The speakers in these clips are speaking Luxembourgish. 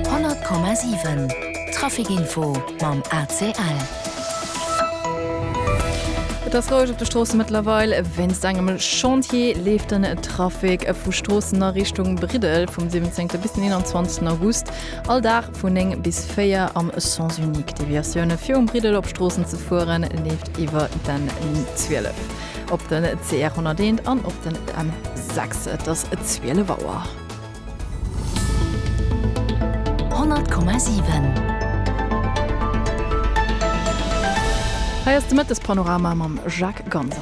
100,7 Traficinfo mam ACL. Et ass roueg op de Stroosse mëttlerweil. Wéinst engem Chantier leeft den Trafic vu Stroossen a Richtung Briddel vum 17. bis den 21. August all Dag vun 9 bis 4 am Sens unique. Deviatioune fir um Briddel op Stroossen ze fueren, leeft iwwer den N12, op den CR 101 an op den M6. Et ass 12 Auer. Hei ass de Mëttespanorama mam Jacques Ganser.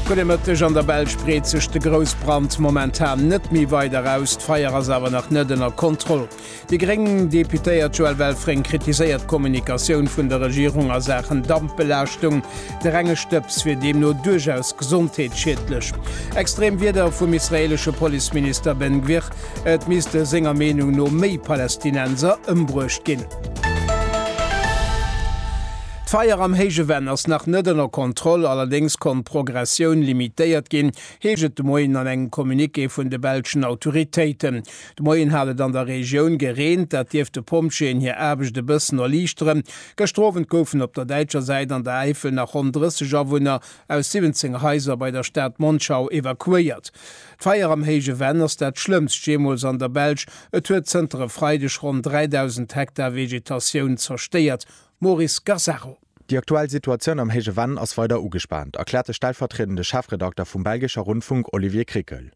Gudde Mëtteg, An der Belsch breet sech de Groussbrand momentan net méi weider aus. D'Feier ass awer nach net ënner Kontroll. Déi gréng Deputéiert Joëlle Welfring kritiséiert d'Kommunikatioun vun der Regierung a Saachen Dampbelaaschtung. De renge Stëbs wier deemno duerchaus gesondheetsschiedlech. Extrem Wierder vum israeelesche Policeminister Ben Gvir, et misste senger Meenung no méi Palästinenser ëmbruecht ginn. D'Feier am Héije Venn ass nach net ënner Kontroll, allerdéngs konnt d'Progressioun limitéiert ginn, heescht et de Moien an engem Communiqué vun de belschen Autoritéiten. De Moien hat et an der Regioun gereent, dat dierft de Pompjeeën hir Aarbecht e bëssen erliichteren. Gëschter Owend goufen op der däitscher Säit an der Äifel nach ronn 30 Awunner aus 17 Haiser bei der Stad Monschau evakuéiert. D'Feier am héije Venn ass dat schlëmmst jeemools an der Belsch. Et huet zënter e Freideg ronn 3.000 Hektar Vegetatioun zerstéiert. Maurice Gazzaro. Déi aktuell Situatioun am héije Venn ass weider ugespaant, erkläert de stellvertriedende Chefredakter vum belgescher Rundfunk Olivier Krikel.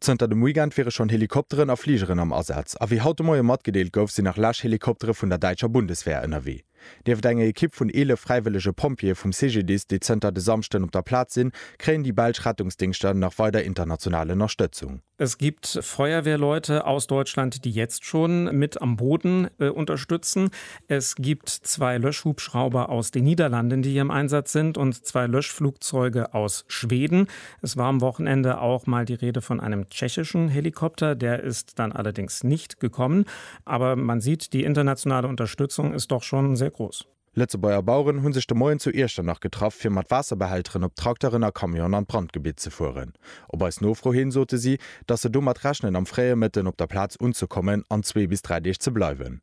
Zënter dem Weekend wiere schonn Helikopteren a Fligeren am Asaz a wéi haut de Moie matgedeelt gouf, sinn nach lech Helikoptere vun der däitscher Bundeswehr ënnerwee. Nieft enger Ekipp vun 11 fräiwëllege Pompjeeë vum CGDIS, déi zënter de Samschden op der Plaz sinn, kréien déi belsch Rettungsdingschter nach weider international Ënnerstëtzung. Es gibt Feuerwehrleute aus Deutschland, die jetzt schon mit am Boden unterstützen. Es gibt zwei Löschhubschrauber aus den Niederlanden, die hier im Einsatz sind, und zwei Löschflugzeuge aus Schweden. Es war am Wochenende auch mal die Rede von einem tschechischen Helikopter, der ist dann allerdings nicht gekommen. Aber man sieht, die internationale Unterstützung ist doch schon sehr groß. Lëtzebuerger Baueren hu sech de Moien zu Iechternach getraff, fir mat Waasserbehälteren op Trakteren a Camionen an d'Brandgebitt ze fueren. Op eis Nofro hin sote si, datt se domat rechnen am fréie Mëtten op der Plaz unzekommen an zwee bis dräi Deeg ze bleiwen.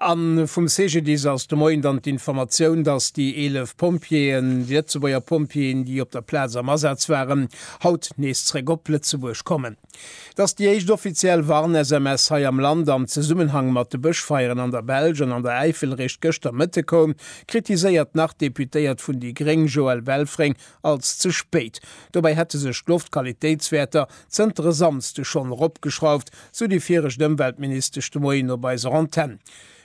A vum CGDIS ass de Moien dann d'Informatioun, datt déi 11 Pompjeeën, déi Lëtzebuerger Pompjeeën, déi op der Plaz am Asaz waren, haut nees zréck op Lëtzebuerg kommen. Et ass déi éischt offiziell Warn-SMS hei am Land am Zesummenhang mat de Bëschfeieren an der Belsch an an der Äifel. Réischt gëschter Mëtte koum, kritiséiert d'Nach-Deputéiert vun déi Gréng Joëlle Welfring, als ze spéit. Dobäi hätte sech d'Loftqualitéitswäerter Zënter e Samsde schonn eropgeschrauft, sou déi viregt Ëmweltministesch de Moien op eiser Antenn.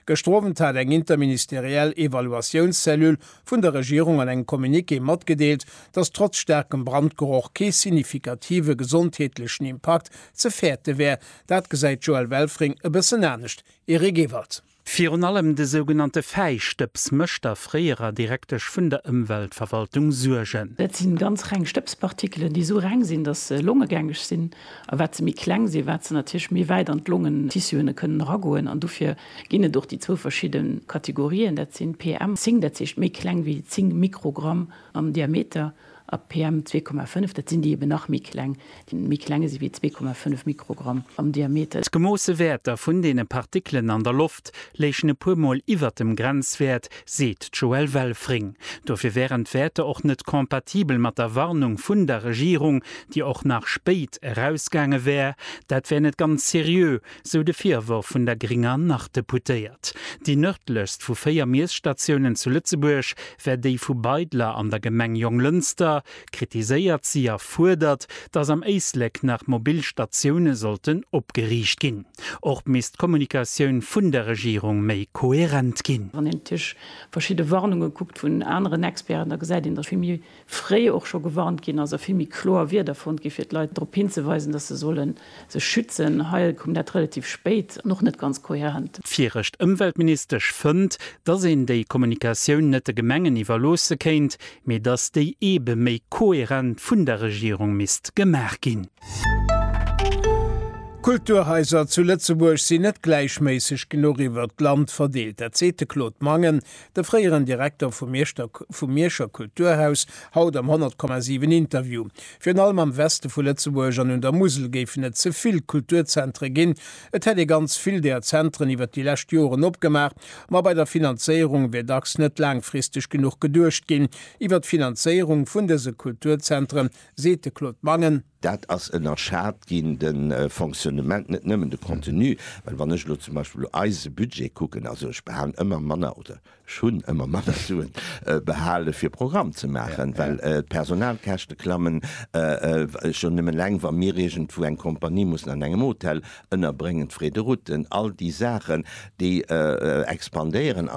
Gëschter Owend hat eng interministeriell Evaluatiounscellule vun der Regierung an engem Communiqué matgedeelt, datt trotz staarkem Brandgeroch kee signifikative gesondheetlechen Impakt ze fäerte wär. Dat gesäit d'Joëlle Welfring e bëssen anescht. Erik Ewald. Virun allem de sougenannte Fäistëbs mécht der fréierer Direktesch vun der Ëmweltverwaltung Suergen. Dat si ganz reng Stëbspartikelen, déi esou reng sinn, datt se longegängeg sinn. A wat se méi kleng sinn, wat se natierlech méi wäit an d'Longentissuë kënnen eragoen. An dofir ginn et och déi zwou verschidde Kategorien, dat sinn PM 10, dat heescht méi kleng wéi 10 Mikrogramm am Diameter, A PM 2,5, dat sinn déi eben nach méi kleng, déi méi klenge si wéi 2,5 Mikrogramm am Diameter. D'gemoosse Wäerter vun deene Partikelen an der Loft léichen e puer Mol iwwer dem Grenzwäert, seet d'Joëlle Welfring. Dofir wären d'Wäerter och net compatibel mat der Warnung vun der Regierung, déi och nach spéit erausgaange wär. Dat wär net ganz seriö, sou de Virworf vun der gringer Nord-Deputéiert. Déi nërdlechst vu véier Miesstatiounen zu Lëtzebuerg wär déi vu Beidler an der Gemeng Jonglënster, kritiséiert si a fuerdert, datt am Éislek nach mobil Statioune sollten opgeriicht ginn. Och misst d'Kommunikatioun vun der Regierung méi koherent ginn. Wann een natierlech verschidde Warnunge kuckt vun aneren Experten, da gesäit een, datt vill méi fréi och scho gewarnt ginn ass a vill méi kloer Wierder fonnt ginn, fir d'Leit drop hinzeweisen, dass se solle sech schützen. Hei koum dat relativ spéit an och net ganz kohärent. D'virecht Ëmweltministesch fënnt, dass een déi Kommunikatioun net de Gemengen iwwerloosse kéint, mee dass déi eebe méi kohärent vun der Regierung misst gemaach ginn. D'Kulturhaiser zu Lëtzebuerg sinn net gläichméisseg genuch iwwert d'Land verdeelt. Dat seet de Claude Mangen, De fréieren Direkter vum Mierschter vum Mierscher Kulturhaus haut am 100,7 Interview. Virun allem am Weste vu Lëtzebuerg an un der Musel géifen et ze vill Kulturzentre ginn. Et hätt ee ganz vill där Zentren iwwer déi lescht Joren opgemaach, ma bei der Finanzéierung wier dacks net laangfristeg genuch geduecht ginn iwwer d'Finanzéierung vun dëse Kulturzentre, seet de Claude Mangen. Dat ass ënnerschat ginn, de Fonctionnement, net nëmmen de Contenu. Well wann ech elo zum Beispill eise Budget kucken, also ech behalen ëmmer manner oder ech hunn ëmmer manner Suen behale fir Programm ze maachen, well d'Personalkäschte klammen, schonn nëmmen eleng wa mir iergendwou eng Kompanie mussen an engem Hotel ënnerbréngen, d'Frais de route, all déi Saachen, déi expandéieren.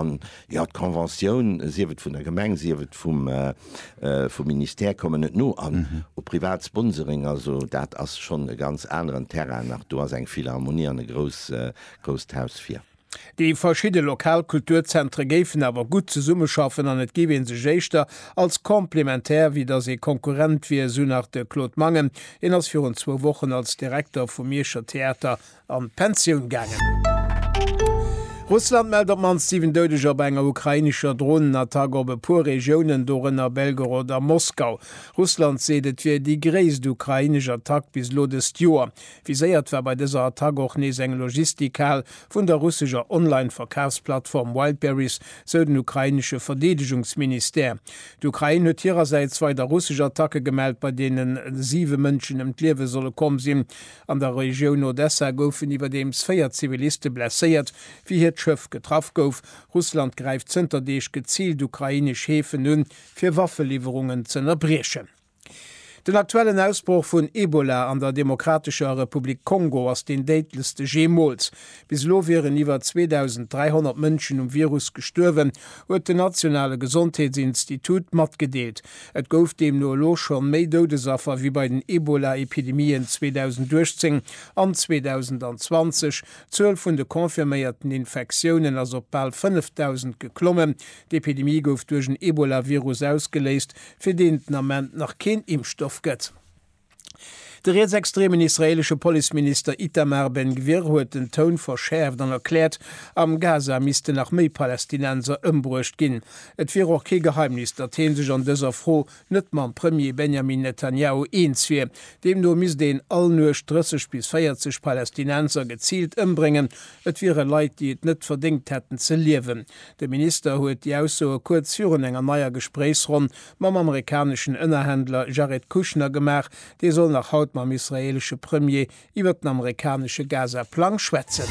Jo, d'Conventioun, sief et vun der Gemeng, sief et vum vum Ministère, kommen net no an u privat Sponsoring. Also dat ass schonn e ganz aneren Terrain nach. Do ass eng Philharmonie an e grouss grousst Haus vir. Déi verschidde lokal Kulturzentre géifen awer gutt zesummeschaffen an et géif ee sech éischter als complémentaire wéi datt ee Konkurrent wier, esou nach de Claude Mangen. Hien ass virun zwou Wochen als Direkter vum Mierscher Theater an d'Pensioun gaangen. Russland mellt op d'mannst 7 Doudeger bei enger ukrainescher Dronenattack op e puer Regiounen, dorënner Belgorod a Moskau. Russland seet, et wier déi gréisst ukrainesch Attack bis elo dëst Joer. Viséiert war bei dëser Attack och nees eng Logistikhal vun der russescher Online-Verkafsplattform Wildberries, sou den ukrainesche Verdeedegungsministère. D'Ukrain huet hirersäits weider russesch Attacke gemellt, bei deene 7 Mënschen ëm d'Liewe solle komm sinn. An der Regioun Odessa goufen iwwerdeems véier Ziviliste blesséiert, wéi hiert Schëff getraff gouf. Russland gräift zënter Deeg geziilt ukrainesch Häfen un, fir Waffeliwwerungen z'ënnerbriechen. Den aktuellen Ausbroch vun Ebola an der Demokratescher Republik Kongo ass deen déidlechste jeemools. Bis elo wieren iwwer 2.300 Mënschen um Virus gestuerwen, huet den nationale Gesondheetsinstitut matgedeelt. Et gouf deemno elo scho méi Doudesaffer wéi bei den Ebola-Epidemien 2018 an 2020. D'Zuel vun de confirméierten Infektiounen ass op bal 5.000 geklommen. D'Epidemie gouf duerch en Ebola-Virus ausgeléist, fir deen et den Ament nach keen Impfstoff gëtt. De rietsextremen israeelesche Policeminister Itamar Ben Gvir huet den Toun verschäerft an erkläert, am Gaza missten nach méi Palästinenser ëmbruecht ginn. Et wier och kee Geheimnis, datt hee sech an dëser Fro net mam Premier Benjamin Netanjahu eens wier. Deemno misst een all Nuecht 30 bis 40 Palästinenser geziilt ëmbréngen. Et wiere Leit, déi et net verdéngt hätten ze liewen. De Minister huet déi Aussoe kuerz virun enger neier Gespréichsronn mam amerikaneschen Ënnerhändler Jared Kushner gemaach. Dee soll nach haut mam israeelesche Premier iwwert den amerikanesche Gaza-Plang schwätzen.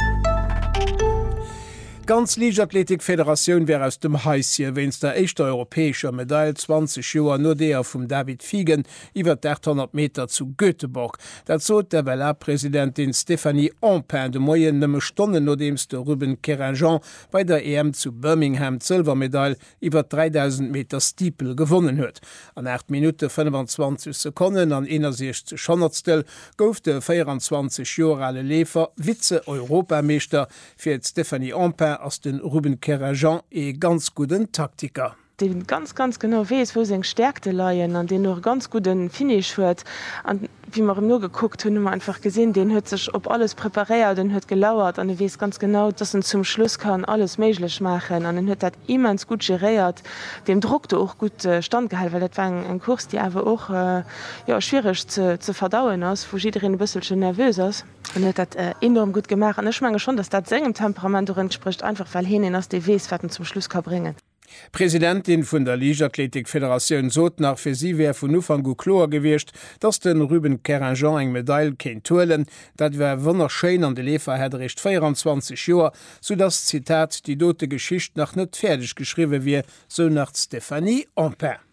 D'ganz Liichtathletik-Federatioun wär aus dem Haisje wéinst der éischter europäescher Medail 20 Joer no deeër vum David Figen iwwert d'Achthonnert Meter zu Göteborg. Dat sot d'FLA-Presidentin Stéphanie Empain de Moien, nëmme Stonnen nodeems de Ruben Querinjean bei der EM zu Birmingham d'Sëlwermedail iwwert 3.000 Meter Steeple gewonnen huet. An 8 Minutte 25 Sekonnen an 61 Honnertstel gouf de 24 Joer ale Leefer Vize-Europameeschter. Fir d'Stéphanie Empain ass de Ruben Kerrajan ee ganz gudden Taktiker. Dee ganz, ganz genau weess, wou seng Stäerkte leien an deen och e ganz gudde Finish huet. Wéi mer em nogekuckt hunn, hu mer einfach gesinn, deen huet sech op alles preparéiert, en huet gelauert an e weess ganz genau, dass en zum Schluss kann alles méiglech maachen an en huet dat immens gutt geréiert, deem Drock do och gutt standgehal, well dat war eng Course, déi awer och, jo, schwiereg ze verdauen ass, wou jiddereen e bësselchen nervös ass. En huet dat enorm gutt gemaach an ech menge schonn, dass dat sengem Temperament och entsprécht, einfach well heen een ass, dee weess, wat en zum Schluss ka bréngen. D'Presidentin vun der Liichtathletik-Federatioun sot nach, fir si wär vun Ufank u kloer gewiescht, dass de Ruben Querinjean eng Medail kéint huelen. Dat wär wonnerschéin an de Leefer hätt eréischt 24 Joer, soudass, Zitat, déi dote Geschicht nach net fäerdeg geschriwwe wier, sou nach d'Stéphanie Empain.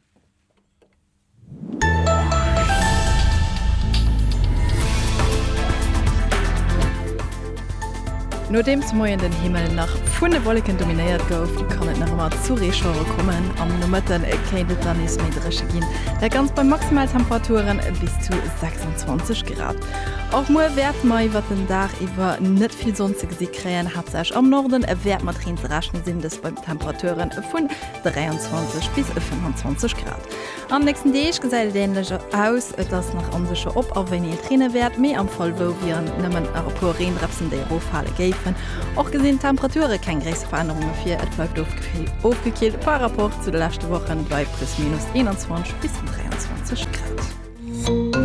Nodeem de Moien den Himmel nach vun de Wolleken dominéiert gouf, kann et nach ëmmer zu Reeschauere kommen. Am Nomëtten kéint et dann nees méi dréche ginn, dat Ganzt bei Maximaltemperaturen bis zu 26 Grad. Och muer wäerte mer iwwert den Dag iwwer net vill Sonn ze gesi kréien, haaptsächlech am Norden wäert mat Reen ze rechne sinn, dëst bei Temperaturen vun 23 bis 25 Grad. An nächsten Deeg gesäit et änlech aus, et ass nach onsécher op a wéini et reene wäert, mee am Fall wou wieren nëmmen e puer Reendrëpsen déi eroffale géifen. Och gesinn d'Temperature keng gréisser Verännerunge vir, et bleift ofgekillt par Rapport zu de leschte Wochen bei plus minus 21 bis 23 Grad.